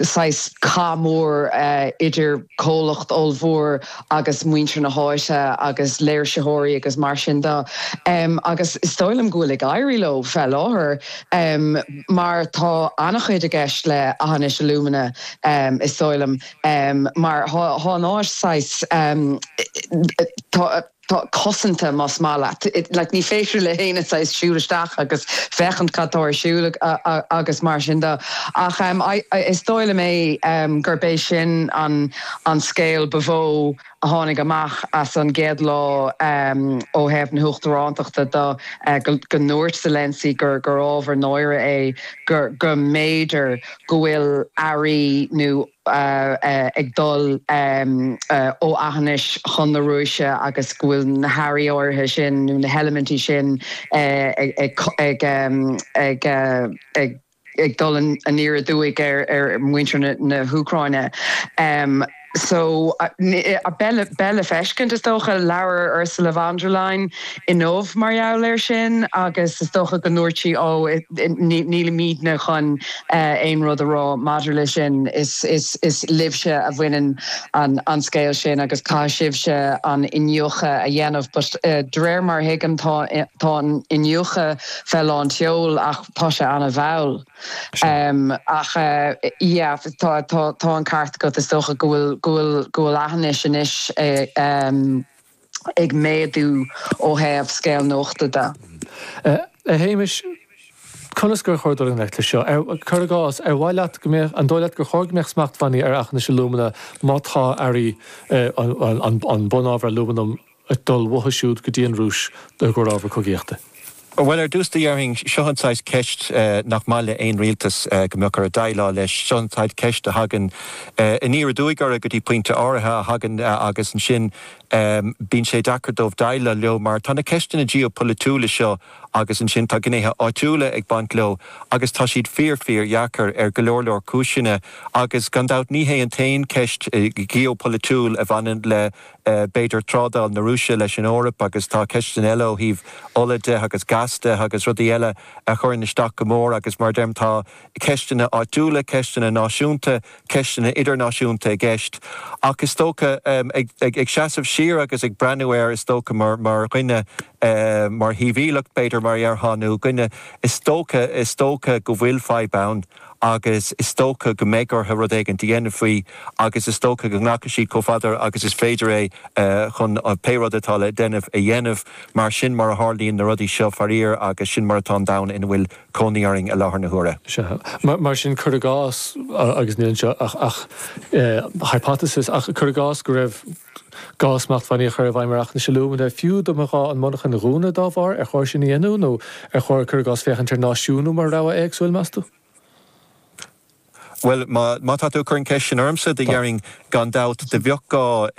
saghas cath mór idir comhlacht ollmhór agus muintir na háite agus léirsitheoirí agus mar sin de agus is dóigh liom go bhfuil ag éirí leo fé láthair mar tá ana-chuid i gceist le Aughinish Alumina is dóigh liom mar tá an áis saghas tá tá cosanta más maith leat. like ní féidir le héinne just siúl isteach agus féachaint cad tá ar siúl agus mar sin de ach em I is dóigh liom é em gurb é sin an an scéal ba mhó a tháinig amach as an gcéad lá em ó thaobh na huachtaránachta de eh go go ndúirt Zelensky gur gur ábhar náire é gur go mb'fhéidir go bhfuil earraí nó ag dul ó Aughinish chun na Rúise agus go bhfuil na hearraí áirithe sin nó na heilimintí sin ag dul aniar aduaidh ar mhuintir na hÚcráine. Beidh le feiscint, is dócha. Labhair Ursula von der Leyen. inniu mar gheall air sin agus is dócha go ndúirt sí 'Ó, nílimídne chun aon rud a rá maidir leis sin, is libhse a bhaineann an scéal sin agus caithfidh sibhse an iniúchadh a dhéanamh. But de réir mar a thuigim, tá an iniúchadh fé lán tseol ach tá sé ana-mhall. Ach yeah, tá an ceart agat, is dócha go bhfuil Aughinish anois ag. ag méadú ó thaobh scéal nuachta de. A Shéamais, conas gur chóir dul i ngleic leis seo? Cuir i gcás, ar mhaith leat go mbeadh, an dóigh leat gur chóir go mbeadh smachtbhannaí ar Aughinish Alumina má tá earraí, an bunábhar alúmanaim, ag dul uathu siúd go dtí an Rúis, i gcomhair ábhar cogaíochta? Bhuel, ar dtús, déarfainn, seo an saghas ceist nach maith le haon rialtas go mbeadh orthu déileáil leis. Seo an saghas ceist a thagann aniar aduaidh orthu go dtí pointe áirithe, a thagann agus ansin bíonn sé deacair dóibh déileáil leo mar tá na ceisteanna geopholaitiúla seo agus ansin tá gnéithe áitiúla ag baint leo agus tá siad fíor, fíordheacair ar go leor, leor cúiseanna agus gan dabht ní hé an t-aon cheist gheopholaitiúil a bhaineann le. b'fhéidir, trádáil na Rúise leis an Eoraip agus tá ceisteanna eile ó thaobh ola de agus gas de agus rudaí eile a chuireann isteach go mór agus, mar a deirim, tá ceisteanna áitiúla, ceisteanna náisiúnta, ceisteanna idirnáisiúnta i gceist. Ach is dócha, ag seasamh siar agus ag breathnú air, is dócha, mar dhuine, mar shibhialach, b'fhéidir, mar a déarfá, nó duine, is dócha, is dócha go bhfuil fadhb ann. agus is dócha go mbeidh orthu rud éigint a dhéanamh faoi agus is dócha go nglacfaidh siad chomh fada agus is féidir é chun pé rud atá le déanamh a dhéanamh. Mar sin a tharlaíonn na rudaí seo, faraor, agus sin mar atá an domhan ina bhfuil cónaí orainn i láthair na huaire. Sea. Mar sin, cuir i gcás, agus níl anseo ach hypothesis, ach cuir i gcás go raibh gá smachtbhannaí a chur i bhfeidhm ar Aughinish Alumina, fiú dá mba ghá an mhonarcha a dhúnadh dá bharr? Ar chóir sin a dhéanamh nó ar chóir, cuir i gcás, féachaint ar náisiúnú mar rogha éagsúil, meas tú? Bhuel, má tá tú ag cur an cheist sin ormsa, do déarfainn, gan dabht, do bheadh gá,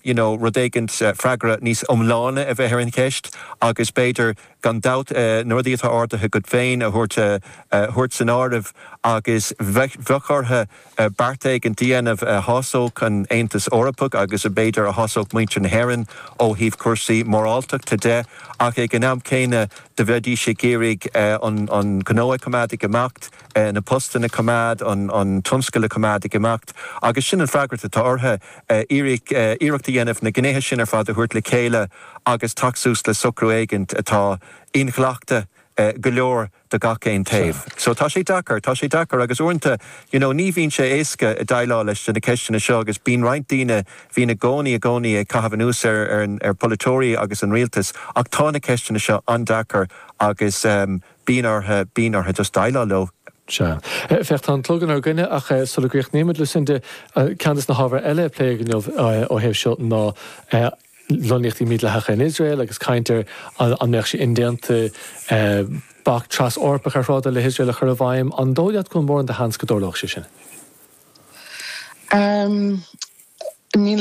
you know, rud éigint, freagra níos iomláine a bheith ar an cheist agus b'fhéidir, gan dabht, na rudaí atá ardaithe agat féin a thabhairt, a thabhairt san áireamh agus bheadh, bheadh orthu, beart éigint a dhéanamh a shásódh an Aontas Eorpach agus b'fhéidir a shásódh muintir na hÉireann ó thaobh cúrsaí moráltachta de, ach ag an am céanna do bheidís ag iarraidh an gnó a choimeád ag imeacht, na postanna a choimeád, an tionscal a choimeád ag imeacht. Agus sin an freagracht atá orthu, iarracht a dhéanamh na gnéithe sin ar fad a thabhairt le chéile agus teacht suas le socrú éigint atá inghlachta go leor do gach aon taobh. So tá sé deacair, tá sé deacair agus uaireanta you know ní bhíonn sé éasca déileáil leis na ceisteanna seo agus bíonn roinnt daoine, bíonn i gcónaí, i gcónaí ag caitheamh anuas ar ar pholaiteoirí agus an rialtas ach tá na ceisteanna seo an-deacair agus bíonn orthu, bíonn orthu just déileáil leo. Sea. Féach, tá an clog inár gcoinne ach sula gcríochnaímid, Lucinda, ceann de na hábhair eile a pléadh inniu ó thaobh seo ná lonnaíochtaí mídhleathacha in Iosrael agus caint ar an mbeadh sé indéanta bac tras-Eorpach ar thrádáil le hIosrael a chur i bhfeidhm, an dóigh leat go bhfuil mórán de sheans go dtarlódh sé sin? Níl a